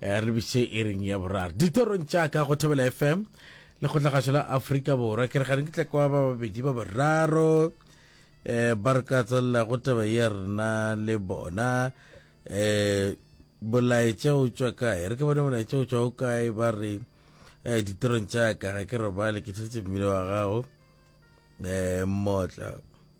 Eh, re bitše e reng ya boraro ditorong tša ka go thobela fm lekgotlagatšo la aforika borwa ke re gane ke tla kwa ba babedi ba boraro um ba re ka tswelela go taba ya rena le bona um bolaetša o tswa kae re ke bone bolaetša o tswa o kae ba re um ditorong tša ka ga ke robale ke tshetse mmele wa gago um motla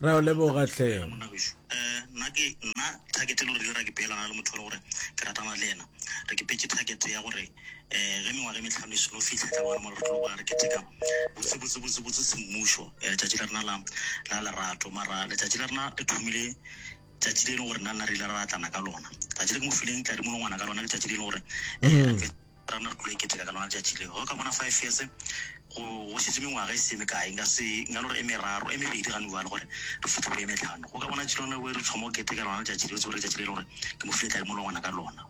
Ra o leboga hle. Dumela monna gešu. Um, nna ke, nna target e le gore dira ke peelana le motho e le gore ke ratana le yena. Re ke petše target ya gore um ge mengwaga e mehlano e seno fihla e tla bona mo re tlo boa re keteka botse botse botse botse semmušo um letšatši la rena la, la lerato. Mara letšatši la rena le thomile tšatši le e leng gore nna nna re ile ra ratlana ka lona. Tšatši le ke mo fileng tladi molongwana ka lona ke tšatši le e leng gore um Rena re tlilo e keteka ka lona letšatši leo. Ge o ka bona five years, go, go šetše mengwaga e se ye mekae, nka se, nka no re e meraro, e mebedi gane bjalo gore re fihle go e mehlano. O ka bona tšela yona, o e re thoma go keteka lona letšatši leo, o tsebe gore ke letšatši le e le gore ke mo file tladimo le ngwana ka lona.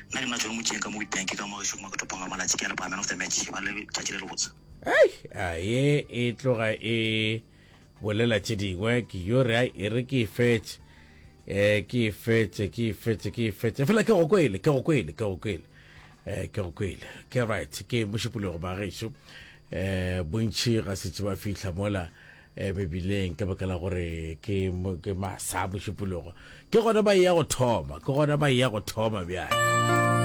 Nna ke nna John Motšeng ka mo Witbank ka mo gešo, mo ke topong ga malatši, ke a leboga man of the match, eba le letšatši le lebotse. Eish, a ye e tloga e. Bolela tše dingwe, ke yo re ai e re ke e fetše, eh, ke e fetše, ke e fetše, ke e fetše, efela ke go kwele, ke go kwele, ke go kwele, eh, ke go kwele, ke right, ke mošupologo ba gešo, eh, bontši ga setse ba fihla mola, eh, Bebileng, ka baka la gore ke, ke masa mošupologo, ke gona ba eya go thoma, ke gona ba eya go thoma bjale.